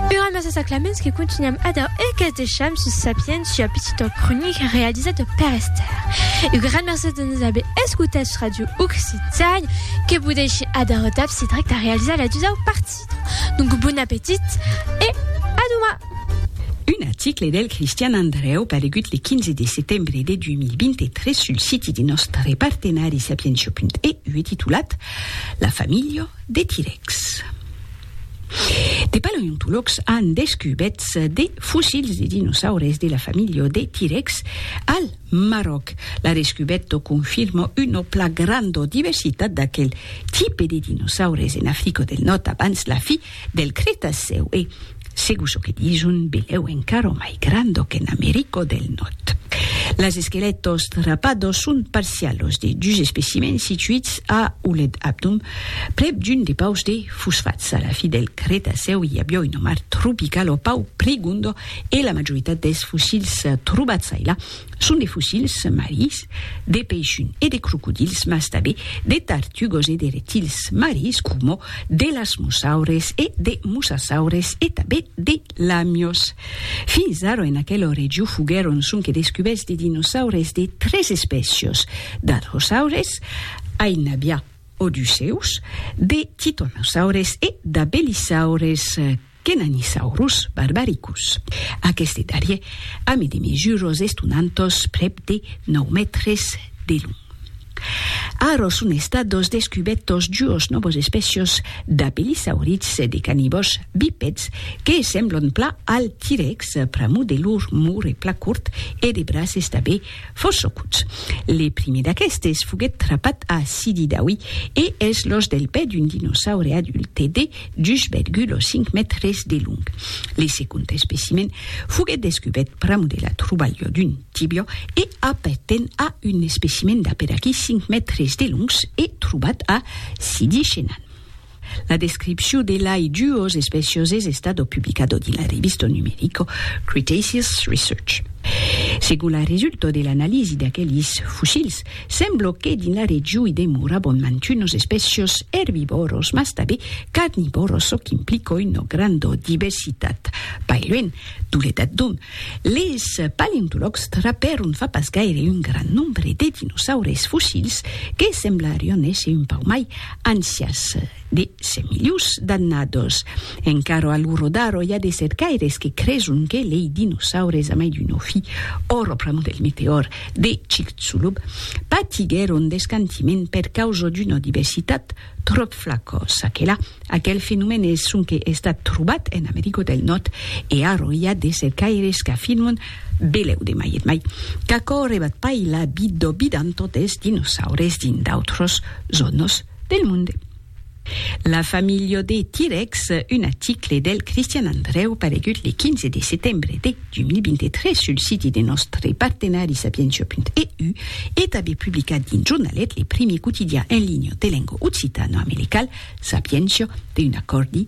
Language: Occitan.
Ura massa s'aclaments que contunham adau e que's deisham sus Sapiens sua pitita cronica realizada per Esther. Un gran mercés de nos aver escotats sus Radio Occitània que vos dèishi adau dab si drech de realizar la dusau partida. Donc bon apetit e a doma! Un article del Cristian Andrèu paregut le 15 de setembre de 2023 sul siti de nòstre partenari Sapientia.eu e titulat La familha De T-Rex. De paleontològs an descubèts de fossils de dinosaures de la familha de T-Rex al Maròc. La descubèta confirma una pla granda diversitat d'aquel tipe de dinosaures en Africa del Nòrd abans la fi del Cretacèu e, Segur çò que dison, belèu encara o mai grando qu'en Americo del Nòrd. Las esquelèts ostrapados son parcialos de dus especimèns situits a Ouled Abdoum, prèp d'un depaus de fosfats. A la fi del Cretacèu i aviá un omar tropical o pau prigondo e la majoritat dels fossils trobats ailà Son de fossils marins de peishun e de crocodils mas tanben de tartugos e de reptils marins coma d'elasmosaures e de mosasaures e tanben de lamios. Fins ara en aquela region foguèron sonque descubèrts de dinosaures de tres espècias, d'arhosaures, ai n'aviá o dus seus, de titanosaures e d'abelisaures. Kenanisaurus barbaricus. Aqueste darrier a me de mesuros estonantos prèp de nòu mètres de long. Ara son estados descubètos duos nòvos espècios d'apelisaurits e de canibòs bipèds que semblon pla al T-Rex pr'amor de lor morre pla cort e de braces tabé fossocuts. Le primier d'aquestes foguèt trapat a Sidi Daoui e es l'òs del pè d'un dinosaure adulte de dus vergula cinc mètres de long. Le segond especimen foguèt descubèrt pr'amor de la trobalha d'un tibiò e apparten a un especimen d'a per aquí cinc mètres de longs e trobat a Sidi Chenan. La descripcion de lai duos espècios es estada publicada dins la revista numerica Cretaceous Research. Segon la resulta de l'analisi d'aquelis fossils, Semblo que dins la region i demorabon mantunos espècios erbivòros mas tanben carnivòros çò qu'implica una granda diversitat. Pas luènh, Toledat d'ont les paleontològs trapèron fa pas gaire un grand nombre de dinosaures fossils que semblarián èsser un pauc mai ancians de 100 milions d'annadas. Encara a l'Urodaro i a de cercaires que creson que lei dinosaures a mai d'un òfi, o raprament del meteòr, de Chicxulub patiguèron d'escantiment per causa d'una diversitat tròp flacosa. Que la, aquel fenomèn es sonque estat trobat en America del Nòrd e ara i a de cercaires qu'afirman, belèu de mai et mai, qu'aquò rebat pas la vida vidanta des dinosaures dins d'autras zònas del monde. La familha de T-Rex, un article del Cristian Andreu paregut le 15 de setembre de 2023 sul siti de nòstre partenari sapientia.eu e tanben publicat dins Jornalet, le primier quotidian en linha de lenga occitano-americal, Sapientia, d'un acòrdi